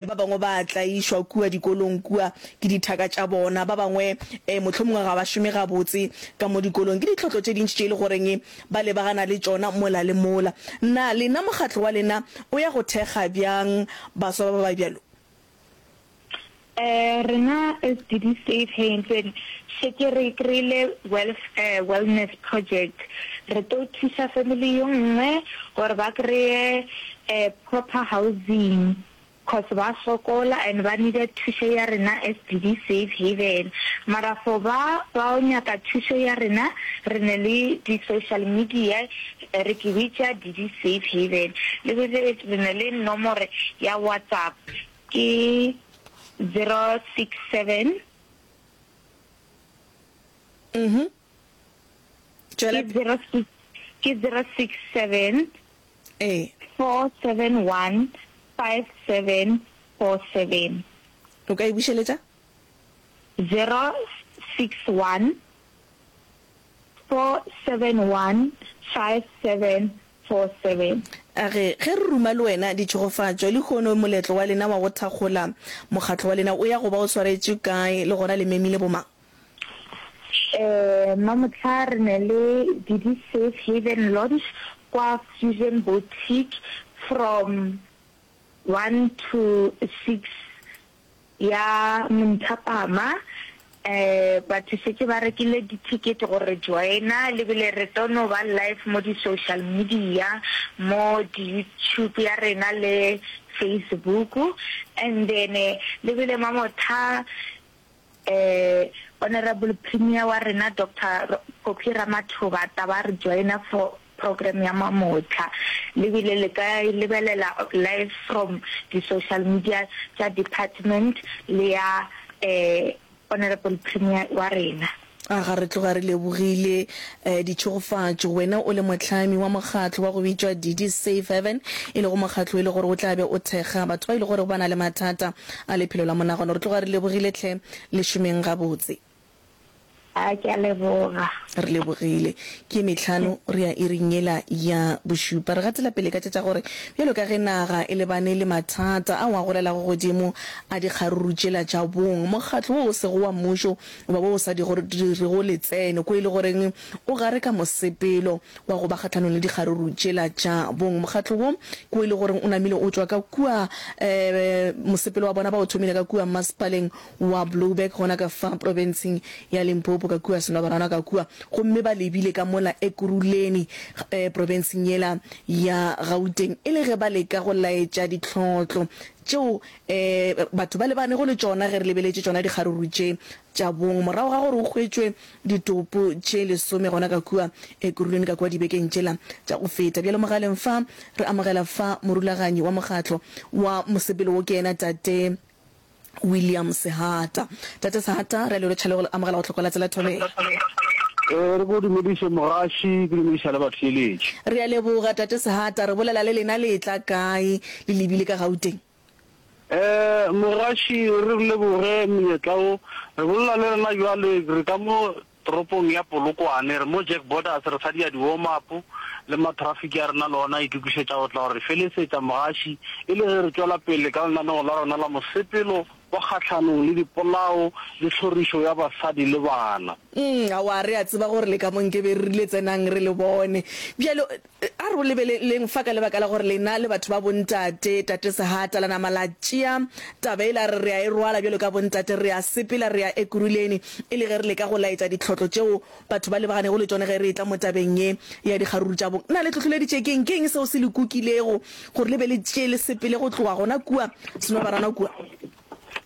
Ba bangwe ba a tlaišwa kua dikolong kua ke dithaka tša bona. Ba bangwe e, mohlomongwe ga ba šome gabotse ka mo dikolong. Ke ditlhotlo tše dintši tše e le goreng ba lebagana le tšona mola le mola. Na lena mokgatlo wa lena o ya go thekga bjang baswa ba ba ba bjalo? E, rena SDD Safe Haven šetše re kry-ile Welfare Wellness Project. Re tlo thuša family yo nngwe gore ba kry-e e, proper housing cos ba sokola and ba needa thušo ya rena as DD Safe Haven mara for ba bao nyaka thušo ya rena re ne le di social media re ke bitša DD Safe Haven le be be re ne le nomore ya WhatsApp ke 067 Mhm. Ke zero six, ke zero six seven, four seven one, five seven four seven. O ka e bušeletša? Zero six one, four seven one, five seven four seven. A re, Ge re ruma le wena ditšhegofatšo, lehono moletlo wa lena wa go thakgola Mokgatlo wa lena o ya go ba o swaretšwe kae, le gona le memile bomang? Um Mamohla re ne le Didi Safe Haven Launch kwa Fusion Boutique from one to six ya monthapama. Um batho šetše ba rekile di ticket go re joina le bile re tlo no ba live mo di social media mo di YouTube ya rena le Facebook and then le bile mamotha Eh, Honourable Premier wa rena Doctor Phophi Ramathoba taba a re joina for program ya mamotlha. Le bile le ka e lebelela live from di social media tša department le ya eh Honourable Premier wa rena. Aga re tloga re lebogile ditšhegofatšo. Wena o le mohlami wa mokgatlo wa go bitšwa Didi Save Heaven, e lego mokgatlo e le gore o tla be o thekga batho ba e le gorego ba na le mathata a lephelo la monagano. Re tloga re lebogile tlhe. Le šomeng gabotse. A ke a leboga. Re lebogile. Ke ye mehlano re ya iring yela ya bošupa. Re gatela pele ka tša tša gore bjalo ka ge naga e lebane le mathata ao a golelago godimo a dikgaruru tšela tša bong, mokgatlo wo o sego wa mmušo O ba o sa di gore di re go le tsene ko e le goreng o gare ka mosepelo wa go ba kgatlhanong le dikgaruru tšela tša bong. Mokgatlo wo ko e le goreng o namile o tšwa ka kua um mosepelo wa bona ba o thomile ka kua Mmasepaleng wa Blouberg gona ka fa profenseng ya Limpopo ka kua Senobarana ka kua gomme ba lebile ka mola Ekurhuleni um profenseng yela ya Gauteng e le ge ba leka go laetša ditlhohlo tšeo Ee, batho ba lebanego le tšona ge re lebeletše tšona dikgaruru tše tša bong. Morago ga gore go hwetšwe ditopo tše lesome gona ka kua Ekuruleni ka kua dibekeng tšela tša go feta, bjalo mogaleng fa re amogela fa morulaganyi wa mokgatlo wa mosepelo wo ke yena Tate William Sehata. Tate Sehata, re a le rotšha le go le amogela go Tlhoko la Tsela Thobela. Ee, re go dumediše mogaši, ke dumediša le batheeletši. Re a leboga Tate Sehata, re bolela le lena le etla kae le lebile ka Gauteng? Ee, Morashi, re leboge monyetla wo. Re bolela le rena bjale, re ka mo toropong ya Polokwane, re mo Jack Borders, re sadia di-warm-up, le matrafiki a rena le ona a itokišetša go tla go re felesetša, Mogashi, e le ge re tšwela pele ka lenaneo la rena la mosepelo wa kgahlanong le dipolao le tlhorišo ya basadi le bana. Umm, aowa, re a tseba gore le ka mo Nkeberrile, tsenang re le bone. Bjale, A re o lebeleleng fa ka lebaka la gore lena le batho ba bontate. Tate Sehata la nama la tšea taba e la re re a e rwala bjalo ka bontate, re a sepela, re ya Ekurhuleni e le ge re leka go laetša ditlhotlo tšeo batho ba lebaganego le tšone ge re etla mo tabeng ye ya dikgaruru tša bong. Na le hlohloleditše ke'ng? Ke'ng seo se le kukilego gore le be le tšee le sepele go tloga gona kua Senobarana kua?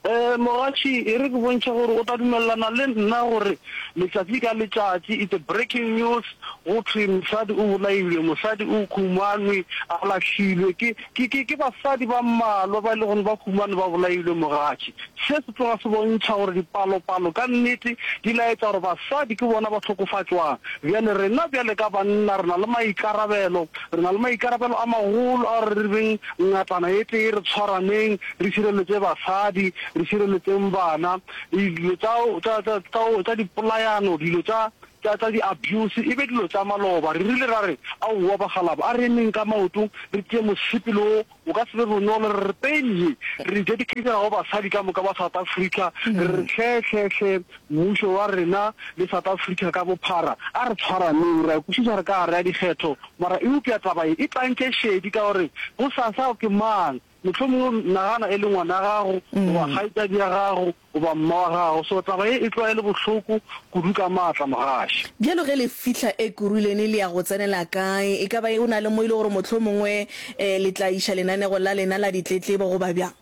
Ee, Mogatši, e re ke bontšhe gore o tla dumelelana le nna gore letšatši ka letšatši it's a breaking news go thwe mosadi o bolailwe, mosadi o khumanwe a lahlilwe ke, ke, ke, ke basadi ba mmalwa ba e le gore ba khumanwe ba bolailwe, Mogatši. Se se tloga se bontšha gore dipalopalo ka nnete di laetša gore basadi ke bona ba hlokofatšwang. Bjale rena bjale ka banna re na le maikarabelo, re na le maikarabelo a magolo a gore re beng ngatana e tee, re tshwaraneng, re šireletše basadi, re šireletšeng bana, dilo tša, tša, tša, tša, tša dipolayano, dilo tša, tša, tša di-abuse e be dilo tša maloba. Re rile ra re, Aowa bakgalaba, a re emeng ka maoto, re tšee mosepelo wo, o ka se be bonolo, re re pein ye re e dedicatela go basadi ka moka ba South Africa, re re hle, hle, hle, mmušo wa rena le South Africa ka bophara, a re tshwaraneng. Re a kwešiša re ka gare ga dikgetho, mara eupša taba ye e tlantše šedi ka gore bosasa ke mang? Mohlomongwe o nagana e le ngwana wa gago goba kgaetšadi ya gago goba mma wa gago. So taba ye e tloga e le bohloko kudu ka maatla, mogaši. Bjalo ge le fihla Ekurhuleni le ya go tsenela kae? E ka ba go na le mo e le gore mohlomongwe le tla iša lenanego la lena la ditletlebo goba bjang?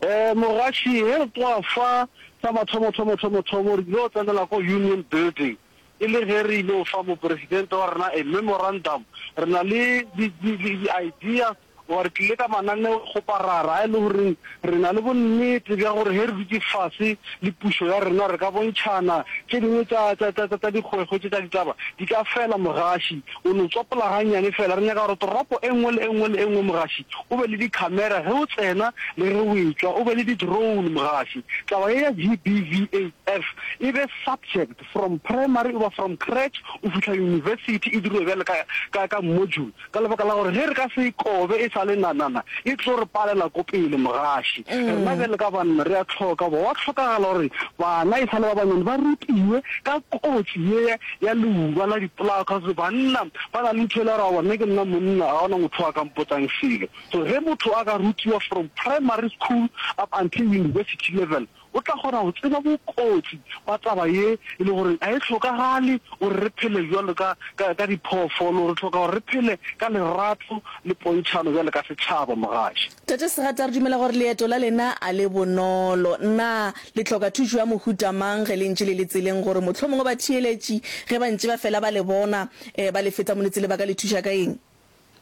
Ee, mogaši. Ge re tloga fa, sa mathomothomothomo re ile go tsenela ko Union Building. E le ge re ile go fa Mopresidente wa rena a memorandum, re na le di-ideas goba re tlile ka mananeo go parara a e le goreng re na le bonnete bja gore ge re dutše fase le pušo ya rena re ka bontšhana tše dingwe tša, tša, tša, tša, tša dikgwekgwe tše tša ditaba di ka fela. Mogaši o no tswapola gannyane fela. Re nyaka gore toropo e nngwe le e nngwe le e nngwe, Mogaši, o be le dikhamera ge o tsena le ge o etšwa, o be le di-drone, Mogaši. Taba ye ya GBVF e be subject. From primary goba from crèche go fihla university e dirilwe bjale ka, ka, ka module, ka lebaka la gore ge re ka se e kobe e sa le nanana, e tlo re palela ko pele mogaši. Rena bjale ka banna re a hloka goba gwa hlokagala gore bana e sa le ba banyane ba rutiwe ka kotsi ye ya leuba la dipolao, cause banna ba na le ntho e le ya gore, Aowa, nna ke nna monna, ga go na motho o a ka mpotsang selo. So ge motho a ka rutiwa from primary school up until university level, O tla kgona go tseba bokotsi ba taba ye e le gore ga e hlokagale gore re phele bjalo ka, ka, ka diphoofolo. Re hloka gore re phele ka lerato le pontšhano bjalo ka setšhaba, mogatša. Tate Segatla, re dumela gore leeto la lena a le bonolo. Na le hloka thušo ya mohuta mang ge le ntše le le tseleng, gore mohlomongwe batheeletši ge ba ntše ba fela ba le bona, ba le feta mo le tsele ba ka le thuša ka eng?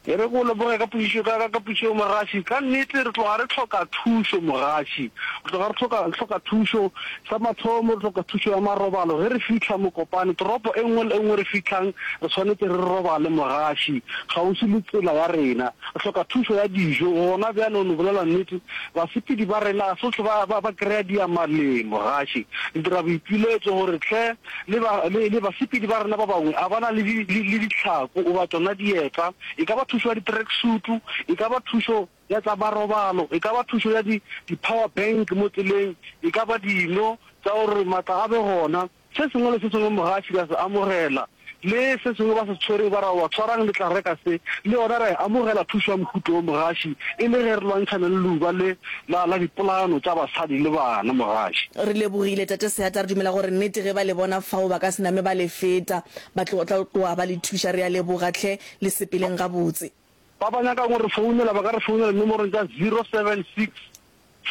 E re ke go leboge ka potšišo, ka, ka, ka potšišo eo mogaši. Ka nnete re tloga re hloka thušo mogaši. Re tloga re hloka, hloka thušo. Sa mathomo re hloka thušo ya marobalo. Ge re fihla Mokopane, toropo e nngwe le e nngwe re fihlhang, re swanetše re robale mogaši, kgauswi le tsela ya rena. Re hloka thušo ya dijo. Gona bjale, o no bolela nnete, basepedi ba rena ga se hlwe ba, ba, ba kry-a diamaleng mogaši. Re dira boipiletšo gore hle Le ba, le, le basepedi ba rena ba bangwe, a ba na le di, le, le ditlhako goba tšona dieta? E ka ba thušo ya di-tracksutu, e ka ba thušo ya tsa marobalo, e ka ba thušo ya di, di-power bank mo tseleng, e ka ba dino tša gore matla a be gona. Se sengwe le se sengwe moga a fihla a se amogela, Le se sengwe ba se tshwere ba ra, Wa tshwarang le tlareka se? Le yona ra e amogela thušo ya mohuto wo, mogaši, e le ge re lwantšhana le leuba le la, la dipolano tša basadi le bana, mogaši. Re lebogile, Tate Seatla. Re dumela gore nnete ge ba le bona fao, ba ka se name ba le feta. Ba tlo, tla tloga ba le thuša. Re a leboga, hle. Le sepeleng gabotse. Ba ba nyakang go re founela ba ka re founela dinomorong tša zero seven six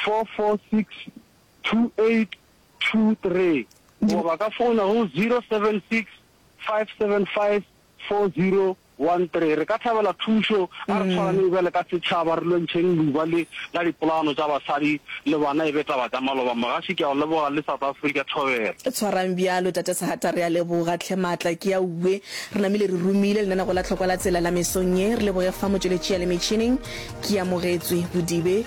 four four six 2823 goba ba ka founa go 076 575 4013. Re ka thabela thušo a re tshwaraneng bjale ka setšhaba re lwentšheng leuba le la dipolaano tša basadi le bana e be taba tša maloba. Mogaši ke a o leboga le South Africa Thobela. Tshwarang bjalo Tate Sehata re a leboga tlhe maatla ke a uwe re namile re rumile lenanego la tlhokwa la tsela la mesong ye re leboge fa motšweletši ya le metšhineng ke amogetswe bodibe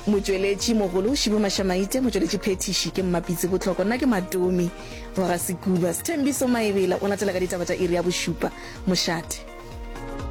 Motšweletši mogolo Shibo Mashamaite, motšweletši phethiši ke Mmapitsi Botlhoko, nna ke Matomi wa ga Sekuba. Sthembiso Maebela o latela ka ditaba tša iri ya bošupa. Mošate.